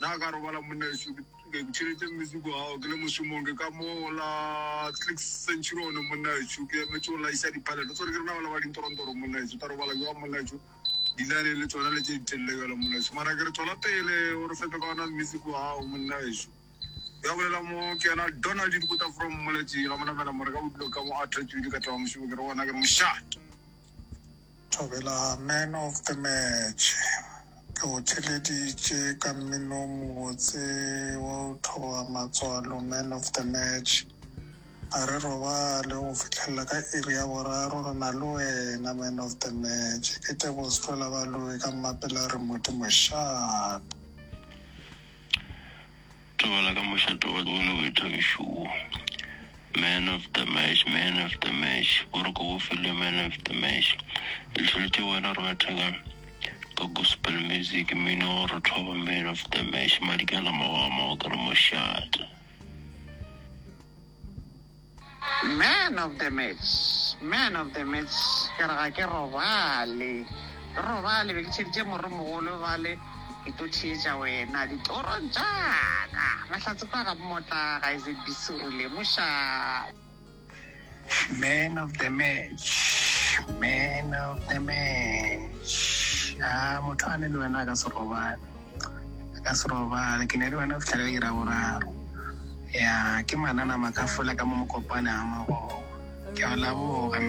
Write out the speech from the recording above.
Na ka robala monna ešo ke ke tšhelete music wa gago ke le mošomong ke ka mo la click century one monna ešo ke emetše o laisa diphalelo tsone ke rena bala ba dintorontoro monna ešo ta robala jwa monna ešo dilane le tsona le tše ditelele jalo monna ešo mara ke re tswela pele o re fepe ka ona music wa gago monna ešo ya bolela mo ke yena donald dikota from moletši ga monamela more ka bodilo ka mo a thetswedi ka taba mošomo ke re ona ke re mošate Thobela, Man of the Match, ke go theleditše ka mmino o mobotse wa go thoba matswalo, Man of the Match. A re robale go fihlelela ka iri ya boraro re na le wena, Man of the Match. E kete bo se tlola ba lowe ka mmapela re Modimo, Sharp. Tobala ka mošate wa go le boithabišo wo. Man of the match, man of the match, o re ko go filwe man of the match. Re hlolotše wena re matheka ka gospel music, mmino wa gore thoba man of the match, madikana mago a mago ke re mošate. Man of the match, man of the match, ke re ga ke robale, ke robale, be ke tšheditše morro mogolo bale, ke tlo theetša wena ditorong tša ka, mahlatse kwa ga mmotla ga e ZBC o lemoša. Man of the match, man of the match, haa motho a ne le wena a ka se robale. Re ka se robale. Ke ne le wena go fihla ka iri ya boraro. Ya, ke manana makafola ka mo Mokopane a Morogo. Ke a leboga.